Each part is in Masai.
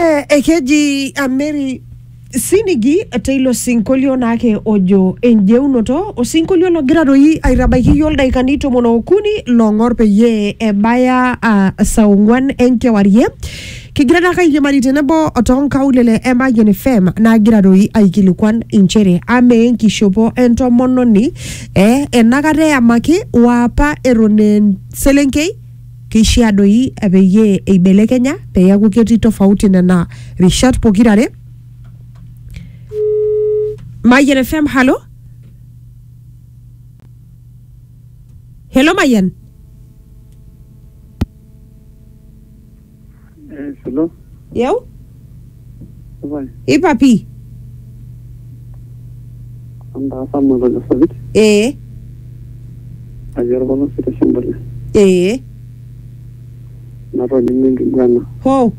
Eh, ekeji ameri sinigi teilo sinkolio naake ojo enjeunoto osinkolio logira doi aitabaiki yiok ildaikani tomon okuni long'or peyie ebaya uh, saa ong'uan enkewarie kigira taake airiamari tenebo tonkaulele e Mayian FM nagira doi aikilikuan inchere amaa enkishopo entomononi eh, enakata eyamaki waapa eton eh, selenkei Keishiaa doi peyie eibelekenya pee eaku ketii tofauti nena rishat pokira are. Mayian FM, halo. Hello Mayian. Eh, solo. yeu Supai. ipa pii Antaasa matojo sapit. ee Ajo orpolosi te Sembule. ee Natolimu enkiguana. ho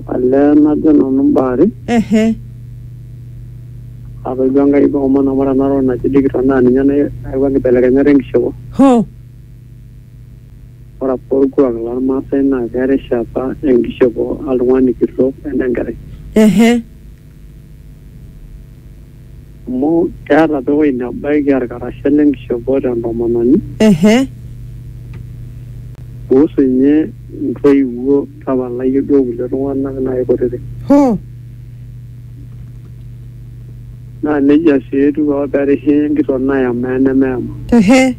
Olee najo nanu imbaa are. ehe Atoijo Enkai keomon amu ore ena toki naji digital naa ninye nayawua nkibelekenyat enkishopo. ho Ore apa olkuak lolmaasai naa kearisha apa enkishopo oltung'ani kitok o ene nkerai. Ehe. Amu keata apa ewueji nebaiki olkarasha le nkishopo te ntomononi. Ehe. Kuhusu ninye intoiwuo tapala iyie duo kulie tung'ana naaji kutiti. Hoo. Naa neijia sii etiu apa pee erishi enkitok nayama o enemeyama. Ehe.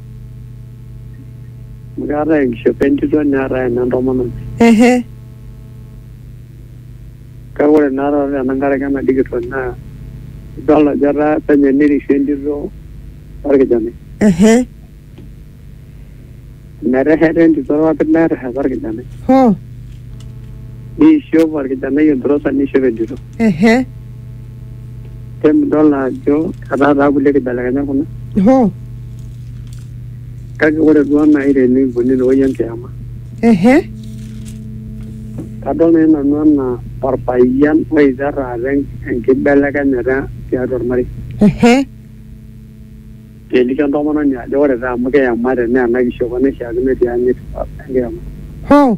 Amu keetae enkishopo entito neetae ene ntomononi. Ehe. Kake ore naa taata tenankaraki ena digital naa idol ajo etaa penyo nirishie entito orkijanai. Ehe. Metesheta entito irpapit netesheta orkijanai. Hoo. Neishop orkijanai enturosa neishop entito. Ehe. Kemidol ajo etaa taa kulie kibelekenyat kuna hoo kake ore duo naaji tenikuni inewueji enkiyama ehe kadol naaji nanu anaa orpayian oita taata en- enkibelekenyata tiatua ormarei ehe keliki entomononi ajo ore taa amu kiyamate naa ena kishopo naishiakino tianyit enkiyama hoo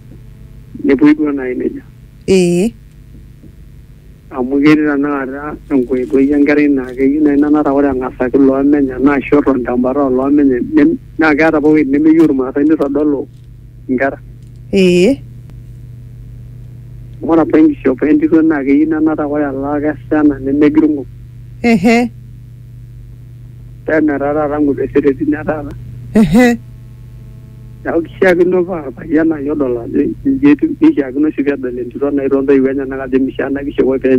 nepuoi duo naaji nejia ee amu ketii tanakata enkoitoi enkerai naa keyieu naaji nanata ore eng'asaki loomenya naa ashu eton tembata oloomenya nem- naa keeta apa ewueji nemeyieu irmaasai nitodolu inkera ee amu ore apa enkishopo entito naa keyieu nenata ore elaakes ena nemegirng'o ehe pee metaa taata ng'uesetetini etaata ehe Neeku kishiakino paa orpayian naaji odol ajo inji etiu nishiakino sii pedol entito naaji toontoiwuo enyenak ajo mishaa ena kishopo pee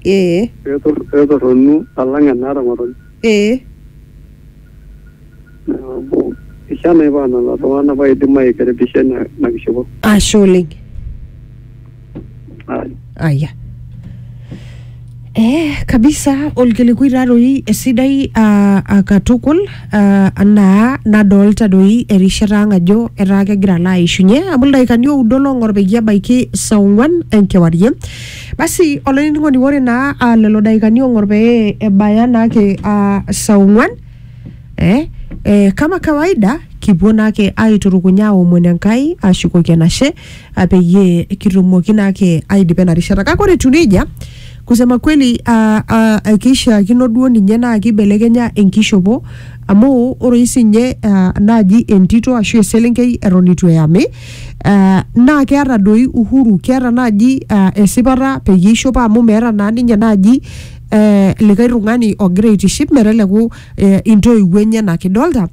ee petor- petorronu alang enaata ng'otonye. ee Neeku kishaa naaji paa lelo tung'anak paa idim aikaribisha ina ina kishopo. Ashe oleng. aya Eh, kabisa olkilikuai taatoi esidai ah, ah, katukul ah, anaa nadolta doi erishata ang ajo etaa kegira alo aishunye amu ildaikani oudo long'or peyie ebaiki saa ong'uan enkewarie basi olainining'oni ore naa ah, lelo daikani ong'or pee ebaya naake ah, saa ong'uan eh, eh, kama kawaida kipuo naake aiturukuny aomon enkai ashukoki enashe ah, peyie kitumoki naake aidipa ena rishata kake ore etiu nejia kusema kweli ah, ah, ah, keishiakino duo ninye naa keibelekenya enkishopo amu ore oshi sinye ah, naaji entito ashu eselenkei eton eitu eyami ah, naa keeta doi uhuru keeta naaji ah, esipata peyie eishopo amu meeta naa ninye naaji eh, likae tung'ani ogira aitiship meteleku eh, intoiwuo enyenak idolta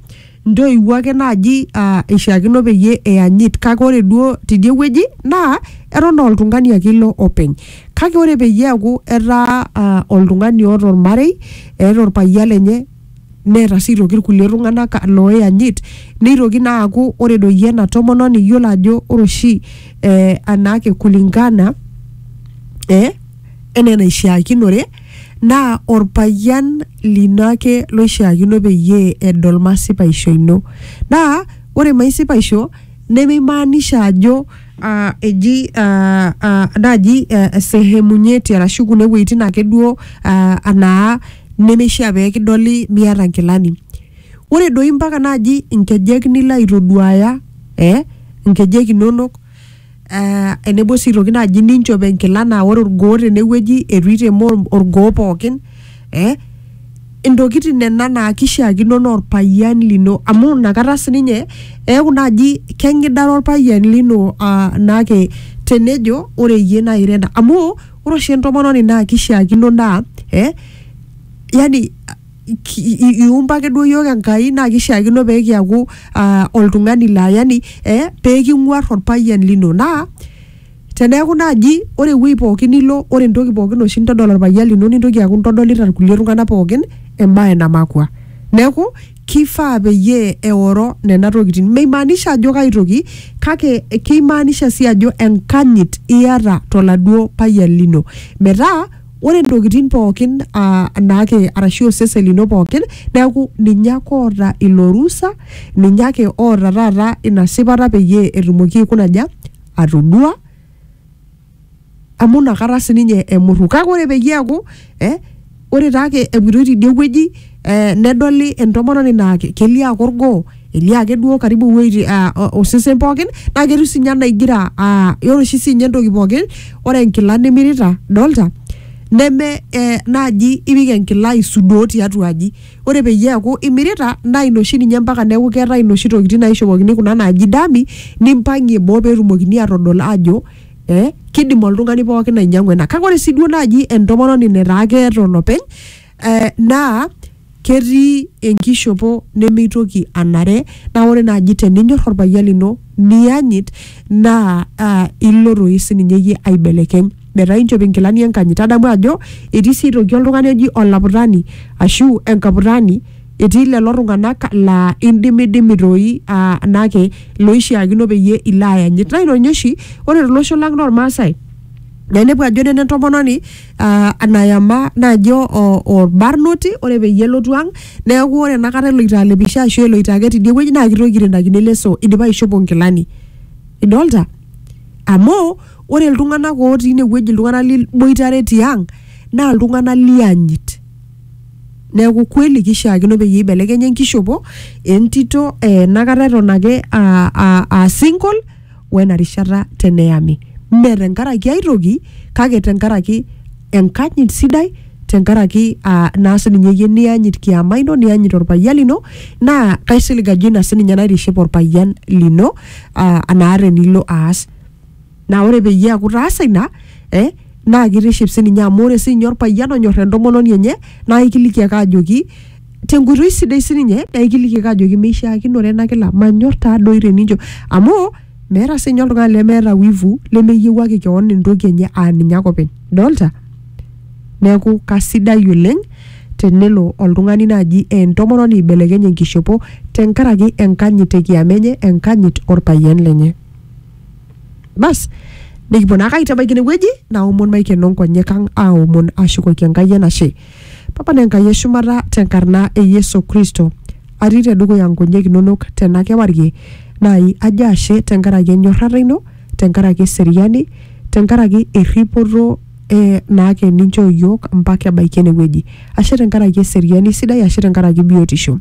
ntoiwuo ake naaji uh, ishiakino peyie eyanyit kake ore duo tidie wueji naa eton oltung'ani ake ilo openy kake ore peyie eaku etaa uh, oltung'ani oota ormarei eeta orpayian lenye neeta sii aitoki irkulie tung'anak looyanyit neitoki naa aaku ore doi ena tomononi iyiolo ajo ore oshi eh, anaake kulingana eh, enaa enaishiakinore Naa olpayian lino ake loishiakino peyie edol masipaisho ino. Naa ore maisipaisho nemeimaanisha ajo aa eji aa aa naaji sehemu nyeti arashu kuna wuejitin ake duo aa anaa nemeishia pee kidoli miata nkilani. Ore doi mpaka naaji nkejek nilo aitoduaaya ee nkejek inonok. eh, enebo sii aitoki naaji ninchop enkila naa ore orgoo tenewueji eitu itema or- orgoo pookin eh, intokitin nena naa kishiakino naa orpayian lino amu inakata sininye eeku naaji keng'idare orpayian lino uh, naake tenejo ore iyie naa ira ena amu ore oshi entomononi naa kishiakino naa eh, yani ki- i- i- iumba ake duo yiok Enkai naa kishiakino pee kiaku ah, oltung'ani laa yani eh, pee king'uar orpayian lino naa teneeku naaji ore ewuei pookin nilo ore entoki pookin oshi nintodol orpayian lino nintoki aaku intodolita irkulie tung'anak pookin embaye namakua neeku kifaa peyie eoro nena tokitin meimaanisha ajo kai toki kake keimaanisha sii ajo enkanyit iyata toladuo payian lino metaa ore ntokitin pookin ah, naake arashu osesen lino pookin neeku ninye ake oota ilo rusa ninye ake oota taata ina sipata peyie etumoki aikunaja atodua amu inakata sininye emurru kake ore peyie eeku eh, ore taake epuitoi tidie wueji eh, nedoli entomononi naa ke- kelio ake orgoo elio ake duo karibu iwuejitin ah, o- osesen pookin naa ketiu sinye anaa igira ah, ore oshi sinye entoki pookin ore enkila nimirita dolta neme eh, naaji ipik enkila aisudoo tiatua aji ore peyie eaku imirita naa ina oshi ninye mpaka neeku keetae inoshi tokitin naishopokini kuna naaji dami nimpang'ie boo peetumokini atodol ajo eh, kidim oltung'ani pookin ainyiang'u ena kake ore sii duo naaji entomononi netaa keeta olopeny eh, naa ketii enkishopo nemeitoki anare naa ore naaji teninyor orpayian lino niyanyit naa uh, ilo toi sininye iyie aibelekeny metaa inchop inkilani enkanyit tadamu ajo etii sii aitoki oltung'ani oji olaputani ashu enkaputani etii lelo tung'anak laa indimidimi toi uh, nake loishiakino peyie ilo ayanyit naa ina ninye oshi ore tolosho lang lormaasai naa inepu ajo nena entomononi ah, anayama najo o- orbarnoti ore peyie elotu ang neeku ore enakata eloito alepisho ashu eloito ake tidie wueji naa kitoki airendakino leso idipa aishopo nkilani idolta amu ore iltung'anak otii inewueji iltung'anak liboitare tiang naa iltung'anak lianyit neeku kweli kishaakino peyie ibelekenya enkishopo entito eh, enakata eton ake aa- aa aa single wena rishata teneyami. Mme tenkaraki ai toki kake tenkaraki enkanyit sidai tenkaraki aa naa sininye iyie niyanyit kiama ino niyanyit orpayian lino naa kaisilig ajo ina sininye naitiship orpayian lino aa anaa tenilo aas naa ore peyie eaku itaasa ina eh, naa kitiship sininye amu ore sininye orpayian onyor entomononi enye naa ikiliki ake ajoki tenkoitoi sidai sininye naa ikiliki ake ajoki meishiakinore ena kila manyor taa doi tenincho amu meeta sinye oltung'ani lemeeta wivu lemeyiewuaki kewon entoki enye aa ninye ake openy dolta neeku kasidai oleng tenelo oltung'ani naaji eh, entomononi aibelekeny enkishopo tenkaraki enkanyit ekiama enye enkanyit orpayian lenye bas nikipuo naake aitabaiki inewueji naomon maikeno nkonyek ang aomon ashukoki enkai enashe Papa ne Nkai e shumata te nkarna e Yesu Kristo atii te dukuya nkonyek inonok tena kewarie naai ajo ashe te nkaraki enyorrata ino, te nkaraki eseriani, te nkaraki erripoto e naake ninchoo iyiook mpaka ebaiki ene wueji. Ashe te nkaraki eseriani sidai, ashe te nkaraki biotisho.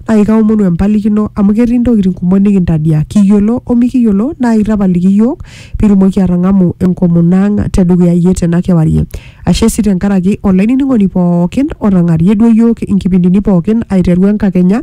Naai kaomonu empalikino amu ketii ntokitin kumok nikintadiaa kiyiolo o mikiyiolo naai tapaliki iyiook pee itumoki atang'amu enkomono ang te dukuya iyie tena kewarie. Ashe sii tenkaraki olainining'oni pookin otang'arie duo iyiook inkipindini pookin aiteru enkakenya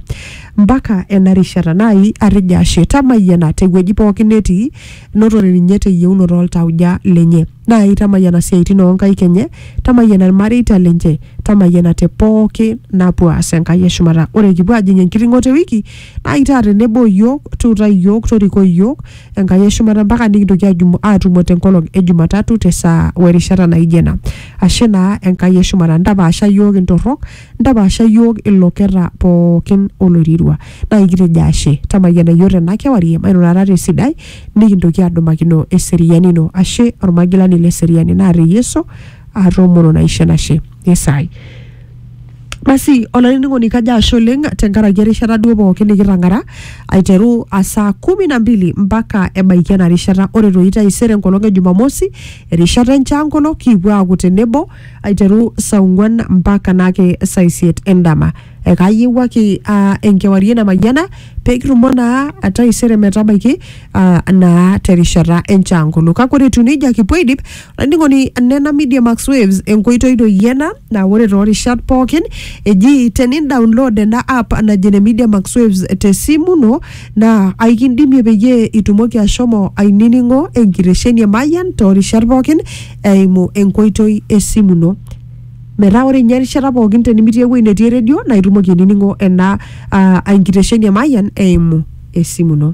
mpaka ena rishata naai atejo ashe tamayiana tewueji pookin netii notore ninye teyieunoto oltauja lenye naai tamayiana siaitin oonkaik enye tamayiana ilmareita lenche tamayiana te pooki napuo aas Enkai eshumata ore kipuo ajing enkiting'oto ewiki naai taa tenebo iyiook tuutai iyiook torikoi iyiook Enkai eshumata mpaka nikitoki ajumo aatumo tenkolong e Jumatatu te saa o erishata naijo ena. Ashe naa Enkai eshumata. Ntapaasha iyiook intorrok, ntapaasha iyiook iloketa pookin oloirirua. Naa ikitejo ashe. Tamayiana iyiook tena kewarie mairurata te sidai nikintoki aadumakino eseriani ino. Ashe olmagilani le seriani naata e Yesu, aatoomonu naisho enashe. Esaai. Basi olainining'oni kajo ashe oleng tenkaraki erishata duo pookin nikitang'ara aiteru a saa kumi na mbili mpaka ebaiki ena rishata ore toi taisere enkolong e Jumamosi erishata enchaangolo kipuo aaku tenebo aiteru saa ong'uan mpaka naake saa isiet endama. Ekayiewuaki aa enkewarie namayiana pee kitumo naa taisere metabaiki aa naa terishata enchaangolo. Kake ore etiu neija kipuo aidip Laining'oni nena Media Max Waves enkoitoi doi ena naa ore toorishat pookin eji tenidownload ena app naji ene Media Max Waves tesimu ino naa aikindimie peyie itumoki ashomo ainining'o enkitesheni e Mayian toorishat pookin eimu enkoitoi esimu ino. Metaa ore ninye erishata pookin tenimitii ewueji netii eredio naa itumoki ainining'o ena ah, enkitesheni e Mayian eimu esimu ino.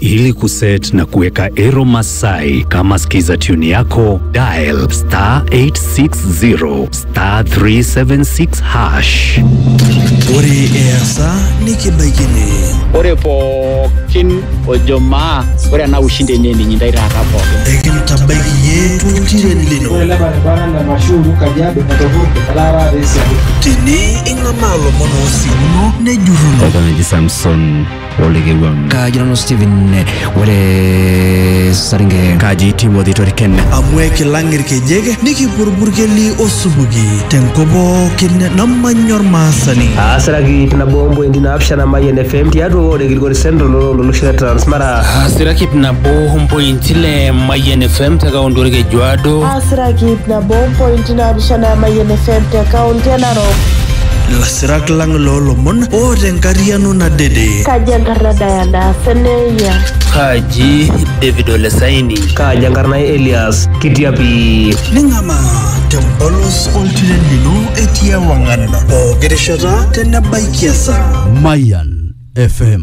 Ili kuset na kuweka Ero Masai kama skiza tune yako, dial star 860 star 376 hash. Ore easa nikibaikini. Ore pookin ojo maa ore ena ushindi enye ninyi ndai taata pookin. Ekintabaiki iyie toltiren lino. Tene ing'amaa lomon oosimuno nejurruno. Eton eji Samson olikewang kaji nanu Steven eh, ore Saringe kaji Timothy Toriken amu ekilang irkejek nikipurburkeli osupuki tenkop pookin namanya ormaasani aasiraki ip nabo ompointi naapishana mayian fm tiatua ward e gilgori central ololosho le transmara asiraki ip nabo ompointi le mayian fm te kaunti orkejuado aasiraki ip nabo ompointi naapishana mayian fm te kaunti e Lasirak lang loo lomon o te nkariano nadede. Kaji enkarna Diana Seneya. Kaji David Olesaini. Kaji enkarna Elias Kitiapi. Ning'amaa tempolos oltiren lino etii ewang'an pooki rishata tenebaikia esaa. Mayan FM